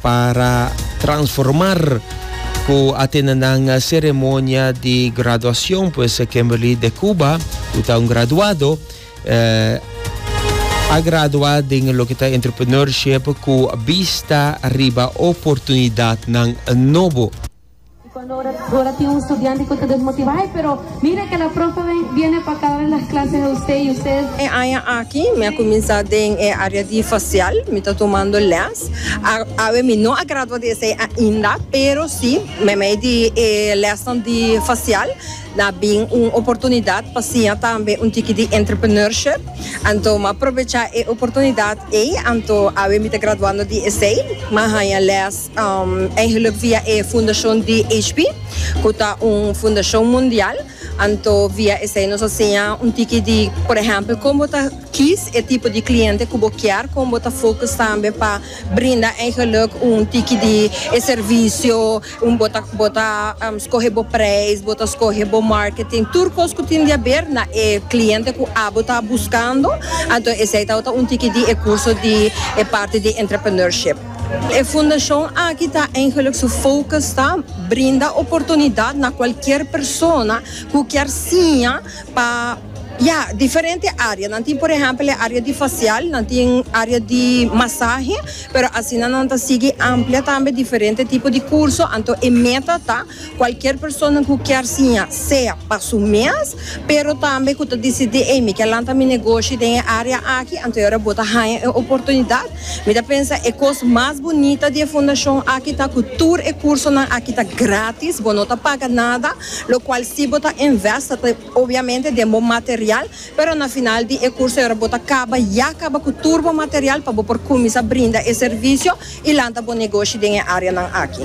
Para transformar cu a tene nan ceremonia di graduacion pues Kimberly de Cuba, cu ta un graduado, eh, a gradua den loke ta entrepreneurship cu bista riba oportunidadnan nobo. Y cuando ora, ora tin un estudiante cu ta desmotiva, ay, pero mire que la profe viene pa cada las clases de usted y usted. E aña aki mi a cuminsa den e area di facial, mi ta tumando les. A, awe mi no a gradua di esey ainda, pero si me mey di e lesnan di facial na bin un oportunidad pa siña tambe un tiki di entrepreneurship, anto mi a probecha e oportunidad ey, anto awe mi ta graduando di esey, mi a haña les. Eigenlijk via e fundashon di HP, ku ta un fundashon mundial, anto via esei nos a siña un tiki di, por ehèmpel, kon bo ta kis e tipo di kliente ku bo kier, kon bo ta fokus tambe pa brinda eigenlijk un tiki di e servisio, bo ta bo ta skohe bo preis, bo ta skohe bo marketing, tur kos ku tin di haber na e kliente ku abo ta buskando, anto esei tabata un tiki di e kurso di e parti di entrepreneurship. E fundashon aki ta eigenlijk su focus ta brinda oportunidat na cualkier persona cu kier siña pa ya diferente area. Nan tin por ehempel e area di facial, nan tin area di masahe, pero asina nan ta sigui amplia tambe diferente tipo di curso, anto e meta ta. Cualkier persona cu kier siña, sea pa su mes, pero tambe cu ta dicidi ey, mi kier lanta mi negoshi den e area aki, anto e ora bo ta haña e oportunidad, mi ta pensa e cos mas bunita di e fundacion aki ta cu tur e cursonan aki ta gratis, bo no ta paga nada, locual si bo ta invest ta ta obviamente den bo material, Pero na final di e curso era bo ta caba ya caba cu tur bo material pa bo por cuminsa brinda e servicio y lanta bo negoshi den e areanan aki.